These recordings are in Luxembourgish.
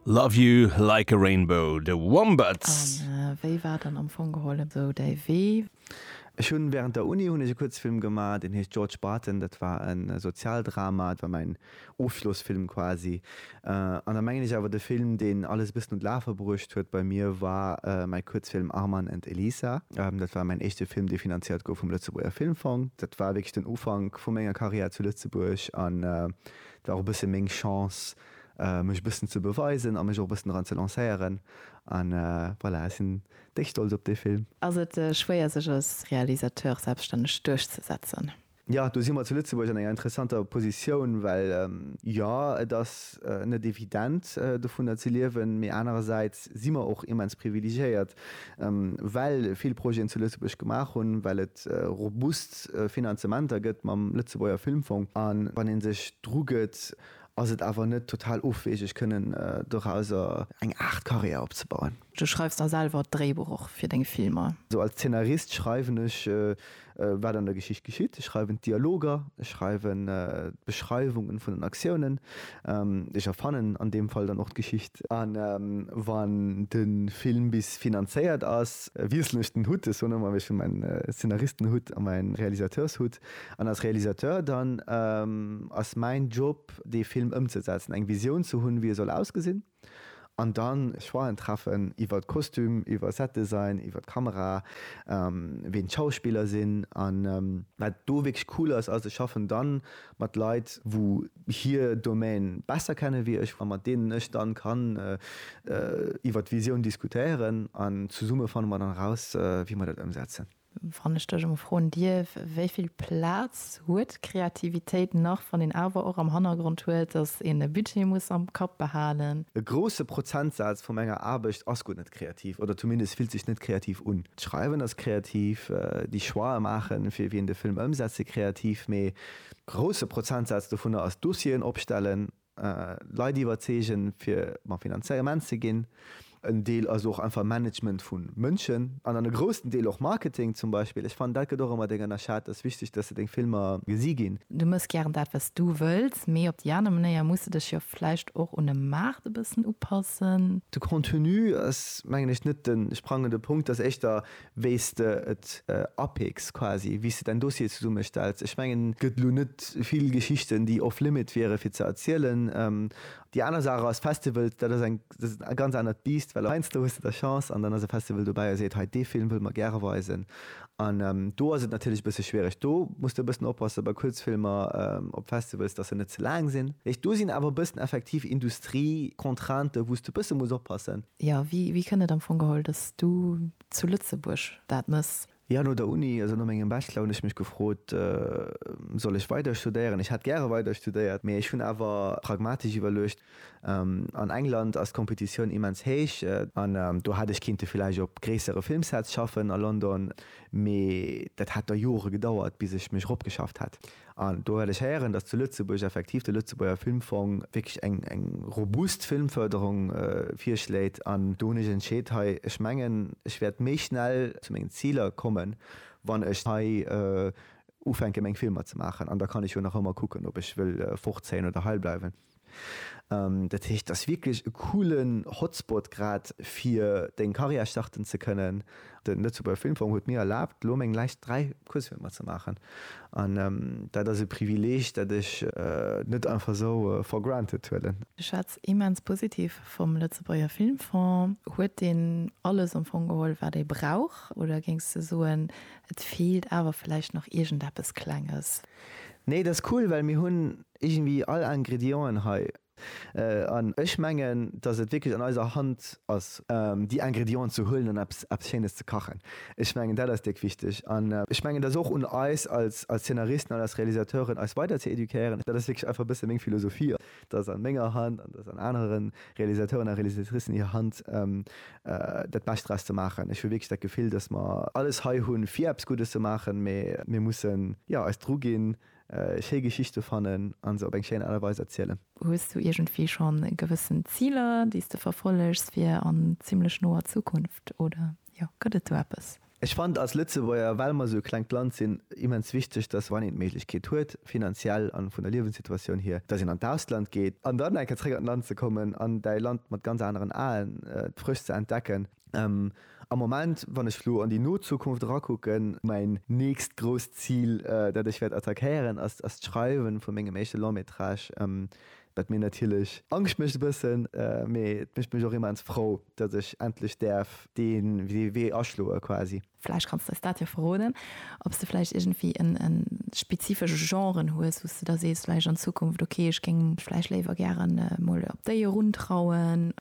Love you like a rainbow, The Wombats. An wéi war dann am Fong geholl esou däi Wee? Ech hunn während der Uni hunn ech e Kuerzfilm gemaach, deen heescht George Barton. Dat war e Sozialdrama, dat war mäin Ofschlossfilm quasi. An da mengen ech awer de Film, deen alles e bëssen un d'Lafe bruecht huet bei mir, war mäi Kuerzfilm Arman and Elisa. Dat war mäin éischte Film, dee finanziert gouf vum Lëtzebuerger Filmfong. Dat war wierklech den Ufank vu menger Karriär zu Lëtzebuerg an War och e bësse meng Chance, mech e bëssen ze beweisen a mech och e bëssen dran ze lancéieren. An voilà, ech sinn déck stolz op dee Film. Ass et schwéier, sech als Realisateur selbststänneg duerchzesetzen? Jo, do si mer zu Lëtzebuerg an enger interessanter Positioun, well jo, et ass net evident, dovunner ze liewen, mee anerersäits si mer och immens privilegiéiert, well vill Projeten zu Lëtzebuerg gemaach hunn, well et robust Finanzementer gëtt mam Lëtzebuerger Filmfong. A wann ee sech drugëtt, ass et awer net total ofwegeg, kënnen dorauser eng Aart Karriär opzebauen. Du schreifs da selwer d'Dréibuch och fir deng Filmer? Als Zeenarist schreiwen ech Wat an der Geschicht geschitt, Ech schreiwen d'Dialoger, ech schreiwen d'Beschreiwungen vun den Aktiounen, ech erfannen an deem Fall dann och d'Geschicht. A wann de Film bis finanzéiert ass, wiesselen ech den Hutt, ech soen ëmmer, ech hu mäin Szenaristenhutt a mäi Realisateurshutt, an als Realisateur dann ass mäin Job dee Film ëmzesetzen, eng Visioun ze hunn, wéi e soll ausgesinn. An dann Choixen treffen iwwert Kostüm, iwwer Setdesign, iwwert Kamera, ween d'Schauspiller sinn. An wat do wierklech cool ass, ass ech schaffen dann mat Leit wou hier Domaine besser kennen wéi ech, a mat deenen ech dann kann iwwert d'Visioun diskutéieren, an zesumme fanne mer dann eraus wéi mer dat ëmsetzen. Wann ech dech emol froen dierf, wéi vill Plaz huet d'Kreativitéit nach, wann een awer och am Hannergrond huet, dass een e Budget muss am Kapp behalen? E grousse Prozentsaz vu menger Aarbecht ass guer net kreativ oder zumindest fillt sech net kreativ un. D'Schreiwen ass kreativ, déi Choix'e maachen, fir wien de Film ëmsetze kreativ, mee e grousse Prozentsaz dovunner ass Dossieren opstellen, Leit iwwerzeegen, fir mam Finanzement ze ginn. En Deel ass och einfach Management vu Mënschen an dann e groussen Deel och Marketing zum Beispill. Ech fannen, dat gëtt och ëmmer deng ënnerschat. Et ass wichteg, dass se deng Filmer gesi ginn. Du mëss gären dat, wat s du wëlls, mee op déi aner Manéier muss de dech jo vläicht och un de Maart e bëssen upassen. De Contenu ass, mengen ech, net de sprangende Punkt. Et ass éischter, wéi s de et apicks quasi, wéi s de däin Dossier zesummestells. Ech mengen. Gëtt elo net vill Geschichten, déi off limit wiere fir ze erzielen. Déi aner Saach ass, Festivals, dat ass eng ganz anert Biisst, well heiansdo hues de da Chance an dann ass e Festival dobäi a seet, hei dee Film wëlle mer gäre weisen. An do ass et natierlech e bësse schwiereg. Do muss de e bëssen oppasse bei Kuerzfilmer op Festivals, datt se net ze laang sinn. Do sinn awer e bëssen effektiv Industrie-Contraintë wou s de e bësse muss oppassen. Jo, wéi kënnt et am Fong geholl, dass du zu Lëtzebuerg dat mëss? Jo, no der Uni, also no mengem Bachelor, hunn ech mech gefrot, Soll ech weider studéieren? Ech hätt gäre weider studéiert, mee ech hunn awer pragmatesch iwwerluecht, An England ass d'Kompetitioun immens héich, an do hätt ech kinnte villäicht op gréissere Filmsets schaffen a London, mee dat hätt da Jore gedauert, bis ech mech eropgeschafft hätt. An do hat ech héieren, dass zu Lëtzebuerg effektiv de Lëtzebuerger Filmfong wierklech eng robust Filmförderung virschléit. An do hunn ech entscheet, hei, ech mengen, ech wäert méi schnell zu mengen Ziler kommen, wann ech hei ufänke meng Filmer ze maachen. An da kann ech jo nach ëmmer kucken, ob ech wëll fortzéien oder heibleiwen. Dat heescht, et ass wierklech e coolen Hotspot grad fir deng Carrière starten ze kënnen. Den Lëtzebuerger Filmfong huet mir erlaabt elo meng läischt 3 Kuerzfilmer ze maachen an dat ass e Privileeg dat ech net einfach esou for granted huelen. Ech schwätz immens positiv vum Lëtzebuerger Filmfong. Huet deen alles am Fong geholl wat ee brauch oder géings de soen et feelt awer vläicht nach iergendeppes Klenges? Nee, dat ass cool well mir hunn Iergendwéi all Ingredienten hei. An ech mengen, dass et wierklech an eiser Hand ass, déi Ingredienten ze huelen an eppes, eppes Schéines ze kachen. Ech mengen, dat ass déck wichteg. An ech mengen, et ass och un eis als, als Zeenaristen an als Realisateuren, eis weider ze éduquéieren. Dat ass wierklech einfach e bësse meng Philosophie, dass an menger Hand an dass an anere Realisateuren a Realisatricen hir Hand, dat Bescht draus ze maachen. Ech hu wierklech dat Gefill, dass mer alles hei hunn, fir eppes Guddes ze maachen, mä mir mussen, jo, eis druginn, schéi Geschichte fannen a se op eng schéin Aart a Weis erzielen. Hues du iergendwéi schonn gewëssen Ziler, déi s de verfollegs fir an zimmlech noer Zukunft, oder jo, gëtt et do eppes? Ech fannen als Lëtzebuerger, well mer esou e klengt Land sinn, immens wichteg, dass wann een d'Méiglechkeet huet, finanziell a vun der Liewenssituatioun hier, dass een an d'Ausland geet an dann eng Kéier zréck an d'Land ze kommen an däi Land mat ganz aneren Aen frësch ze entdecken. Am Moment, wann ech elo an déi no Zukunft erakucken, mäin nächst grousst Zil, dat ech wäert attackéieren, ass d'Schreiwen vu mengem éischte Long-métrage, wat mir natierlech Angscht mécht e bëssen, mee et mécht mech och immens frou, datt ech endlech däerf dee Wee aschloe quasi. Vläicht kanns de eis dat jo verroden, ob s de vläicht iergendwéi e spezifesche Genre hues, wou s de da sees vläicht an Zukunft, okay, ech géing mech vläicht léiwer gären emol op déi eruntrauen?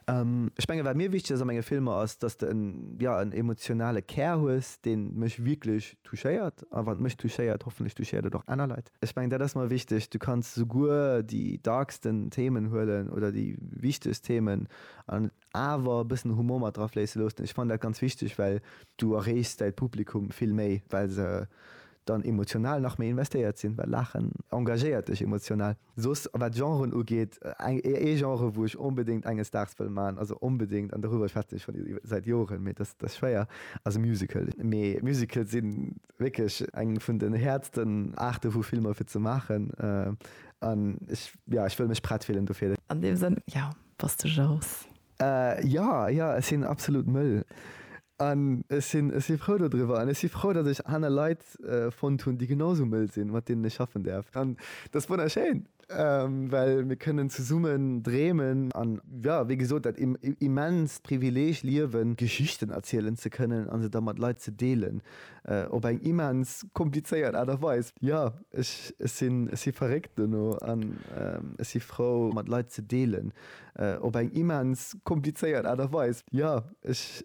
Ech mengen, wat mir wichteg ass a menge Filmer, ass, dass de en, jo, en emotionale Kär hues, dee mech wierklech touchéiert. A wann et mech touchéiert, hoffentlech touchéiert et och aner Leit. Ech mengen, dat ass mer wichteg. Du kanns souguer déi darksten Themen huelen oder déi wichtegst Themen an et awer e bëssen Humor mat drafléisse loossen. Ech fannen dat ganz wichteg, well du erreechs däi Publikum vill méi, well se Dann emotional nach méi investéiert sinn, well Laachen engagéiert dech emotional. Soss wat Genren ugeet, ee Genre wou ech onbedéngt enges Daags wëll man, also onbedéngt, an doriwwer schwätzen ech schonn säit Joren, mee dat ass schwéier, ass e Musical. Mee Musicale si wierklech eng vun den häertsten Aarte vu Filmer fir ze maachen an ech, jo, ech wëll mech prett fillen dofir. An deem Sënn, jo, bass de Jous. Jo, jo, ech sinn absolut mëll. An ech sinn, ech si frou dodriwwer. An ech si frou, datt ech aner Leit fonnt hunn, déi genau esou mëll sinn, mat deenen ech schaffen däerf. An dat ass wonnerschéin, well mir kënnen zesummen dreemen. An jo, wéi gesot, dat immenst Privileeg, Liewen, Geschichten erzielen ze kënnen a se da mat Leit ze deelen, op eng immens komplizéiert Aart a Weis. Jo, ech sinn, ech si verréckt dono an ech si frou, mat Leit ze deelen. op eng immens komplizéiert Aart a Weis. Jo, ech